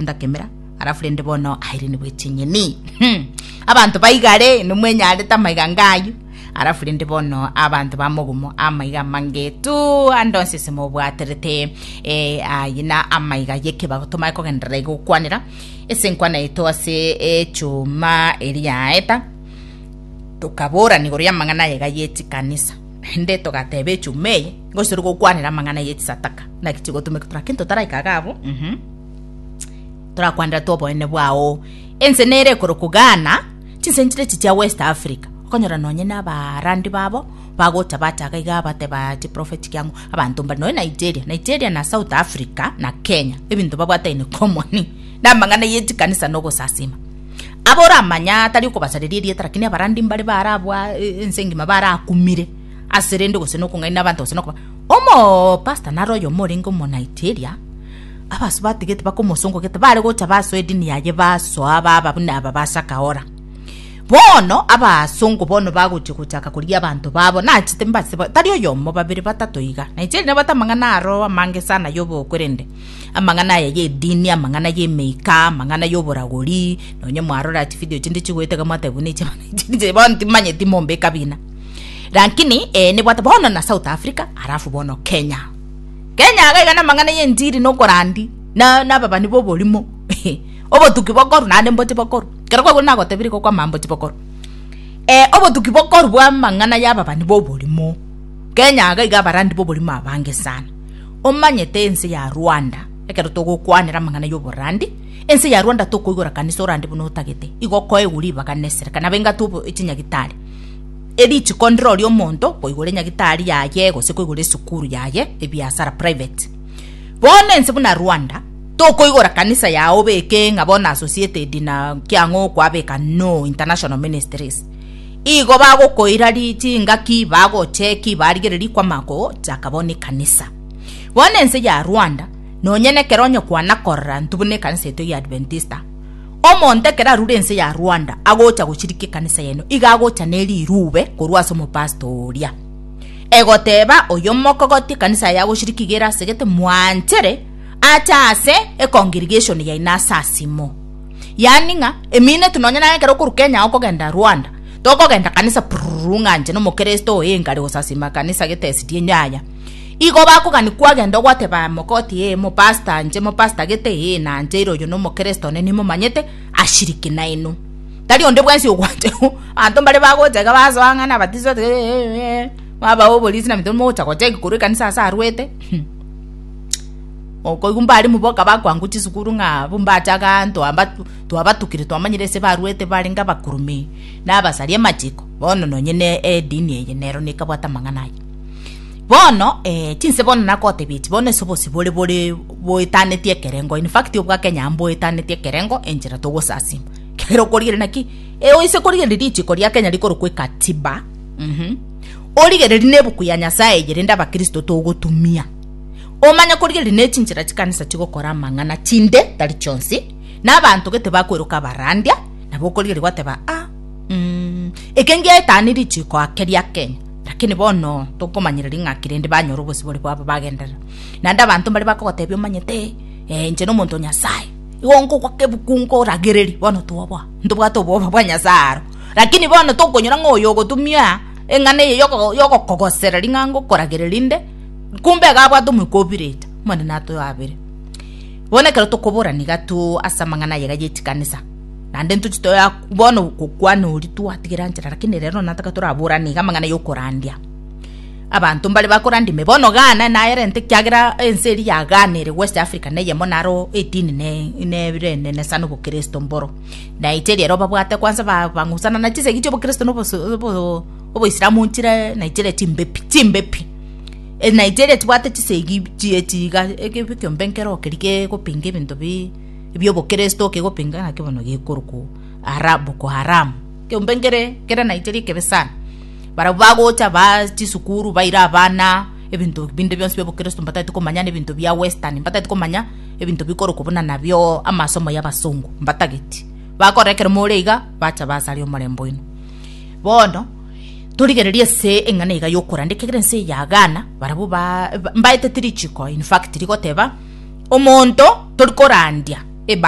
ndakemera alafu rende bono airenigwe chinyeni Hmm. abanto baigare nomwenyarete amaiga ngayu alafu rende bono abanto bamogumo amaiga mangetu andonse ese mobwaterete eh, aye na amaiga yekebago tomae kogenderera igokwanera ese nkwana yeto ase echuma eriaeta tokaborana igoro y'amang'ana ayega y'echikanisa nde togateba echuma eye ngosiri gokwanera amang'ana y'echisataka naki chigotumeka torakento taraikaga abo mhm torakwanderete oboene bwao ense nere ekoroku Ghana chinsentire echi chia West Africa okonyora nonye na abarandi babo bagocha bataga iga bateba chiprofeti kiango abanto mbare nonye Nigeria Nigeria na South Africa na Kenya ebinto babwate in common na amang'ana ye chikanisa na ogosasima abo oramanya atari okobasareria erieta lakini abarandi mbare barabwa e- ense engima barakumire ase rende gose nokong'aina abanto gose nokoba omo pastor naro oyomo orenge omo Nigeria Abaso batigete bakomosongogete bare gocha basoa edini yaye basoa baba buna aba basakahora. Bono abasongo bono bagochia gochaka koria abanto babo nachete mbase ba- tari oyomo babere batato iga naicheri nabate amang'ana aro amange sana yobokorende amang'ana aya ya edini amang'ana ya emeika amang'ana ya oboragori nonye mwarora chividio chinde chigoeta iga mwateba buna echi echi bono timanyeti mombe ekabina lakini eh, nibwate bono na south africa alafu bono kenya Kenya iga iga namang'ana y'enchiri na okorandi na ababani b'oborimo obotuki bokoru naende mbochi bokoru. Ekero kwagwire nagotebiri igo kwamama mbochi bokoru. obotuki bokoru bw'amang'ana y'ababani b'oborimo. Kenya iga iga abarandi b'oborimo abange sana. Omanyete ense ya Rwanda ekero togokwanera amang'ana y'oborandi, ense ya Rwanda tokoigora kanisa orande buna otagete. Igo okoegwa ribaga na esereka nabo engatu chinyagitari. Erituko ndiroria omonto koigora enyagitari yaye gose koigora esukuru yaye ebiasara private. Bono ense buna Rwanda tokoigora kanisa yao obeke ng'a bono associated na kiang'o okwabeka no international ministries. Igo bagokoira chingaki bagocheki barigererie kwama ko chaka bono ekanisa. Bono ense ya Rwanda nonye nekero onye kwana korora ntubune ekanisa eto ya Adventista. Omonto ekero arure ense ya Rwanda agocha gochirika ekanisa y'eno iga agocha nerirube korwa ase omopastor oria egoteba oyo mokogoti ekanisa yaye agochirika iga erasegete mwanchere ache ase econgregation yaino ase asimo yaani ng'a emineti nonye naye ekero okoru Kenya okogenda Rwanda tokogenda kanisa prururu ng'a inche nomokristo oyo engari gosasima kanisa gete esidi enyo yaya. Igo bakogani kwagenda ogoteba mogoti ee mopasta anche mopasta gete ee na anche ere oyo nomokeresto one nimomanyete ashiriki naino tari onde bwensi ogwanche anto mbare bagocha iga basoa ng'ana abatiso ee mwaba oborisi na mito mocha gocha igoro ekanisa ase arwete okoigwa mbare moboka bakwango chisukuru ng'a bombacha iga anto amba twabatukire twamanyire ase barwete barenge abakurume na abasari amachiko bono nonye ne edini eye nero nekabwate amang'ana aya. Bono eh chinse bono nakotebia echi bono ase obosibwa ore bore boetaneti ekerengo in fact obwa Kenya amo boetaneti ekerengo enchera togosasima ekero okorigereria naki oise korigereria richiko ria Kenya rikorokwa ekatiba mh origereria na ebuku ya Nyasaye eye rende abakristo togotumia omanye korigereria na echinchera chikanisa chigokora amang'ana chinde tari chionsi na abanto gete bakweroka abarandia nabo okorigereria gwateba ah mh eke ngiaetani richiko ake ria Kenya. Lakini bono tokomanyereri ng'aki rende banyora obosibore bwabo bagenderera. Naende abanto mbare bakogotebia omanyete, Ee, inche nomonto o Nyasae, igo nkogwa kebuku nkoragereria, bono toboa, ntobwate obwoba bwa Nyasae aro. Lakini bono tokonyora ng'a oyo ogotumia eng'ana eye yogo- yogokogosera ring'ango okoragereria inde, kumbe iga abwate omoika o Pirita, Omonene atoyoabere. Bono ekero tokoborana iga tu ase amang'ana aye iga ye chikanisa, Naende ntoche toya bono gokwana oria twatigera nchera, lakini rero nataka toraborane iga amang'ana y'okorandia abanto mbare bakorandia ime. Bono Ghana naerente ekiagera ense eria ya Ghana ere West Africa neyemo naro edini nerenene sana obokristo mboro. Naeche riria babwate kwansa bang'usana na chisegi chi'obokristo na oboislamu nchire na chire chimbe pi chimbe pi. Naeche eria chibwate chisegi chie chiga ekebi ekiombe nkere okeria kegopinga ebinto bi. ebi'obokeresto okegopinga naki bono gekorokwo Boko Haram. Ekepengere ekero naicheire ekebe sana. Barabwo bagocha baa chisukuru baira abana ebinto binde bionsi bi'obokeresto mbatagete komanya na ebinto bia western mbatagete komanya ebinto bikorokwo buna nabio amasomo y'abasongo mbatageti. Bakora ekero more iga bacha basare omorembe oino. Bono Torigereria ase eng'ana ega y'okoranda ekiagera ense eye yagaana barabwo mbaeteti richiko in fact rigoteba omonto tori korandia ebasi